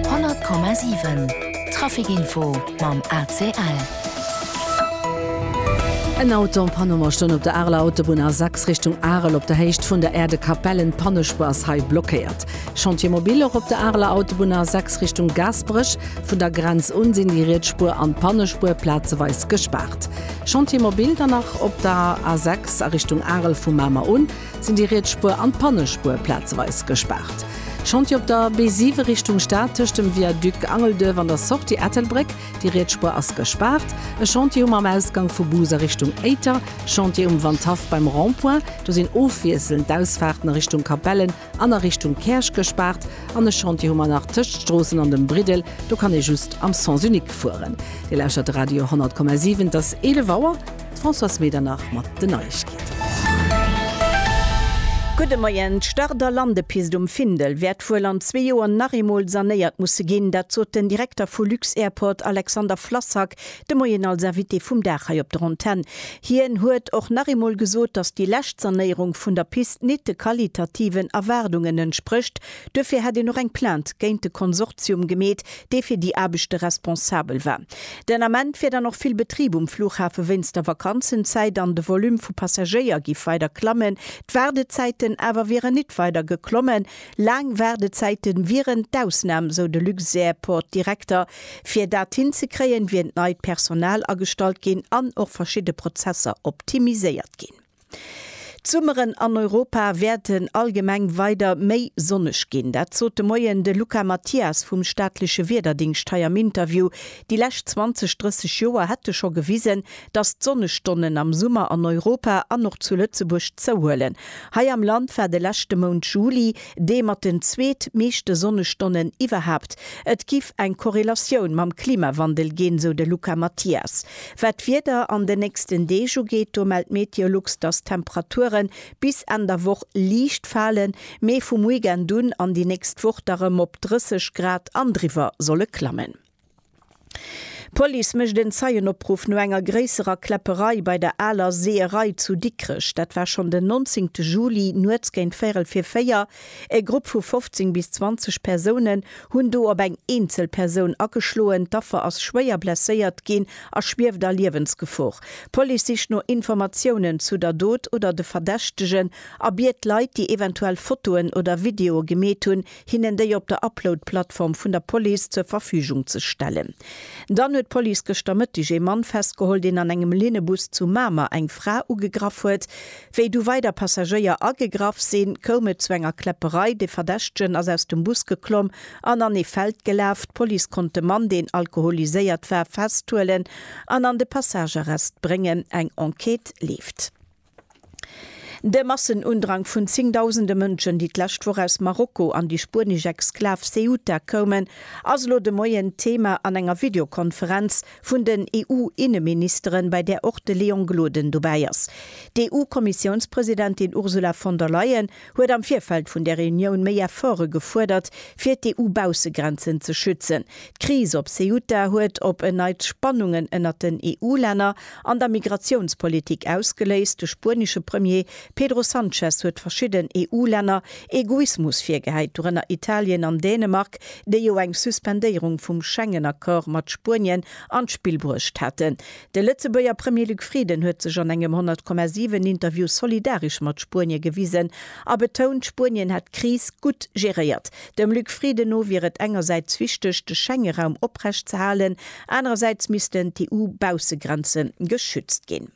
100,7 Traficinfo mam ACL. En Auto am Panneau a stoung op der Areler Autobunn A6 Richtung Arel op der Héicht vun der Aire de Capellen. D'Pannespuer ass hei blockéiert. Chantier mobile och op der Areler Autobunn A6 Richtung Gaasperech. Vun der Grenz un sinn déi riets Spuer an d'Pannespuer plazeweis gespaart. Chantier mobile dann nach op der A6 a Richtung Arel vu Mamer un. sinn déi riets Spuer an d'Pannespuer plazeweis gespaart. Chantier op der B7 Richtung Stad tëscht dem Viaduc Angelduerf an der Sortie Ettelbréck, déi riets Spuer ass gespaart. E Chantier um am Ausgank vu Bus a Richtung Éiter. Chantier um Wandhaff beim Rond-point, do sinn ofwiesselnd d'Ausfaarten a Richtung Capellen an a Richtung Käerch gespaart. An e Chantier hu mer nach tëscht Stroossen an dem Briddel, do kann ee just am Sens unique fueren. Dir lauschtert Radio 100,7, et ass 11 Auer. D'Françoise Medernach mat den Neiegkeeten. Gudde Moien. D'Start a Landepist um Findel wäert wuel an zwee Joer nach eemol sanéiert musse ginn. Dat sot den Direkter vu Lux-Airport Alexander Flassak de Moien als Invité vum Dag hei op der Antenn. Hien huet och nach eemol gesot, datt déi lescht Sanéierung vun der Pist nit de qualitativen Erwaardungen entsprécht. Duerfir hätt een och eng Plainte géint de Konsortium gemeet, dee fir déi Aarbechte responsabel war. Den Ament wier dann och vill Betrib um Flughafe wéinst der Vakanzenzäit an de Volume vu Passagéier giff weider klammen. D'Waardezäiten awer wieren nit weider geklommen. Laang Waardezäite wieren d'Ausnam, sou de Luxairport-Direkter. Fir dat hinzekréien, wier neit Personal agestallt ginn an och verschidde Prozesser optimiséiert ginn. D'Summeren an Europa wäerten allgemeng weider méi sonneg ginn. Dat sot de Moien de Luca Mathias vum staatleche Wiederdingst hei am Interview. Déi lescht 20, 30 Joer hätte scho gewisen, datt d'Sonnestonnen am Summer an Europa an och zu Lëtzebuerg zouhuelen. Hei am Land war de leschte Mount Juli, dee mat den zweet meeschte Sonnestonnen iwwerhaapt. Et giff eng Korrelatioun mam Klimawandel ginn, sou de Luca Mathias. Wat d'Wieder an den nächsten Deeg ugeet, do mellt Meteolux, datt d'Temperature bis Enn der Woch liicht falen, mee vum Weekend un an déi nächst Woch da rëm op 30 Grad an driwwer solle klammen. D'Police mécht en Zeienopruff no enger gréisserer Kläpperei bei der Aler Seeërei zu Dikrech. Dat war schonn den 19 Juli, nuets géint véierel vir véier. E Grupp vu 15 bis 20 Persounen hunn do op eng eenzel Persoun ageschloen. D'Affer ass schwéier blesséiert ginn a schwieft a Liewensgefor. D'Police sicht no Informatiounen zu der Dot oder de Verdächtegen a biet Leit, déi eventuell Fotoen oder Videoe gemeet hunn, hinnen déi op der Upload-Plattform vun der Police zur Verfügung ze stellen. Dann huet d'Police gëschter Mëtteg ee Mann festgeholl, deen an engem Linnebus zu Mamer eng Fra ugegraff huet. Wéi du weider Passagéier agegraff sinn, koum et zu enger Kläpperei. De Verdächtegen ass aus dem Bus geklomm an an ee Feld gelaf. D'Police konnt de Mann, deen alkoholiséiert war, festhuelen an an de Passagearrest bréngen. Eng Enquête leeft. De Massenundrang vun zéngdausende Mënschen, déi d'lescht Woch aus Marokko an déi spuenesch Exklav Ceuta koumen, ass elo de Moien d'Thema an enger Videokonferenz vun den EU-Inneministeren, bei där och de Léon Gloden dobäi ass. D'EU-Kommissiounspresidentin Ursula von der Leyen huet am Virfeld vun der Reunioun méi Efforte gefuerdert, fir d'EU-Baussegrenzen ze schützen. D'Kris op Ceuta huet op en Neits Spannungen ënnert den EU-Länner an der Migratiounspolitik ausgeléist. De spuenesche Premier Pedro Sanchez huet verschidden EU-Länner Egoismus virgehäit, dorënner Italien an Dänemark, déi jo eng Suspendéierung vum Schengen-Accord mat Spuenien an d'Spill bruecht haten. De Lëtzebuerger Premier Luc Frieden huet sech an engem 100,7 Interview solidaresch mat Spuenie gewisen a betount, Spuenien hätt d'Kris gutt geréiert. Dem Luc Frieden no wier et engersäits wichteg, de Schengeraum oprecht ze halen, anerersäits missten d'EU-Baussegrenze geschützt ginn.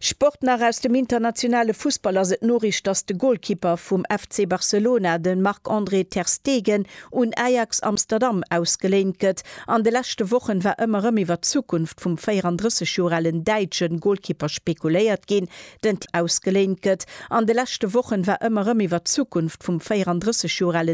Sport nach, Aus dem internationale Fussball ass et d'Noriicht, datt de Golkipper vum FC Barcelona, de Marc-André ter Stegen, un Ajax Amsterdam ausgeléint gëtt. An de leschte Wochen war ëmmer rëm iwwer d'Zukunft vum 34 Joer alen däitschen Golkipper spekuléiert ginn, den ausgeléint gëtt. An de leschte Wochen war ëmmer rëm iwwer d'Zukunft vum 34 Joer alen.